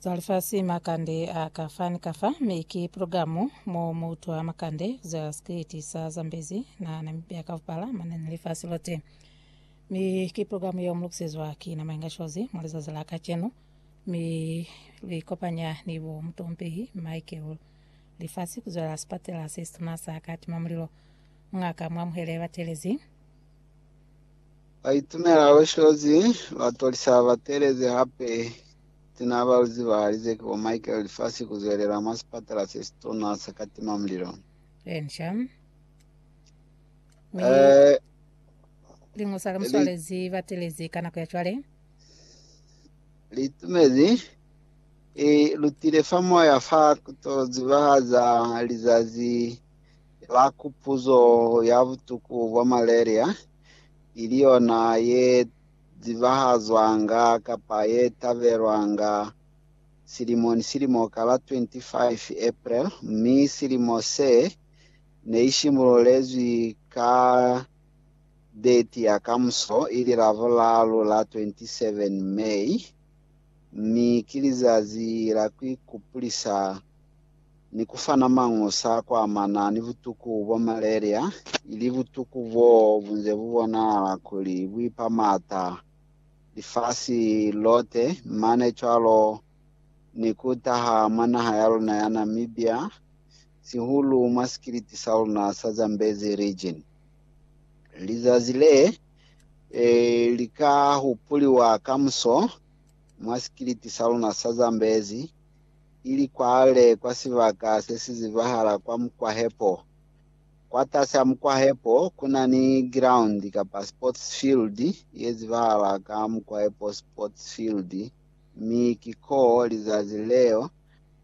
Za lifasi makande a ka fa ni ka fa, mi ki pulogalamu mo mu utwa makande ku zwela sikiliti sa Zambezi na Namibia ka bupala mane ni lifasi lote. Mi ki pulogalamu yeo mu lukisezwa ki na Mainga Shozi mwa lizazi la kacenu, mi lu ikopanya ni bo mutompehi Michael Lifasi ku zwela sipatela se situna sa Katimamulilo. Mung'a ka mu amuhele batelezi. Baitumela Loshozi ba tolisa batelezi hape sina baluzi ba lize ki bo Michael lifasi ku zwelela mwa sipatala se si tuna sa katima mulilo. Lensha. Mi Eh, lingusa ka li- muswalezi batelezi ka nako ya cwale. litumezi i lutile fa moya fa ku to zibahaza lizazi la kupuzo ya butuku bwa malaria. ili yona ye zibahazwanga kapa ye tabelwanga silimo ni silimo ka la 25 April, mi silimo se ne i simululezwi ka deti ya kamuso, ili Lavulalu la 27 May, mi ki lizazi la ku ikupulisa ni ku fana mañusa a kwa mana ni butuku bwa malaria, ili butuku bo bu nze bu bonahala kuli bu ipa m'ata lifasi lote, mane cwalo ni ku taha mwa naha ya luna ya Namibia, sihulu mwa sikiliti sa luna sa Zambezi Region. Lizazi le li ka hupuliwa kamuso mwa sikiliti sa luna sa Zambezi ili kwale kwa sibaka se si zibahala kwa mukwahepo. Kwatasi a mukwahepo ku na ni giraundi kapa sports field ye zibahala ka Mukwahepo Sports Field mi ki ko lizazi leo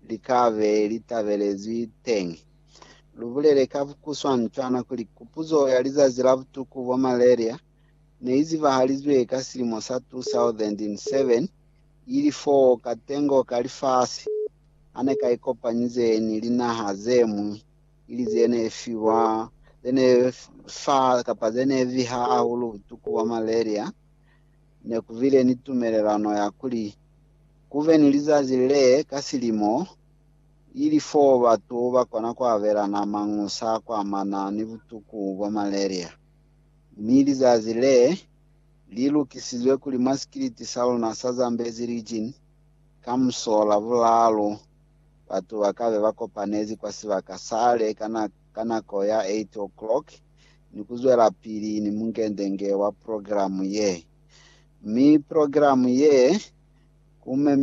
li ka be li tabelezwi teñi. Lu bulele ka kuswancwana kuli kupuzo ya lizazi la butuku bwa malaria ne i zibahalizwe ka silimo sa 2007 ili fo ka tengo ka lifasi, ha ne ka ikopanyize ni linaha ze ñwi, ili ze ne fiwa, ze ne fa, kapa ze ne viha hahulu butuku bwa malaria, ne ku bile ni tumelelano ya kuli ku be ni lizazi le ka silimo, ili fo batu ba kona ku abelana mañusa kwa mana ni butuku bwa malaria, mi lizazi le li lukisizwe kuli masikiliti sa luna sa Zambezi Region ka musola bulaalu batu ba kabe ba kopanezi kwa sibaka sale ka nako ya 8:00 ni ku zwelapili ni mungendenge wa progilamu ye. Mi progilamu ye ku memiwa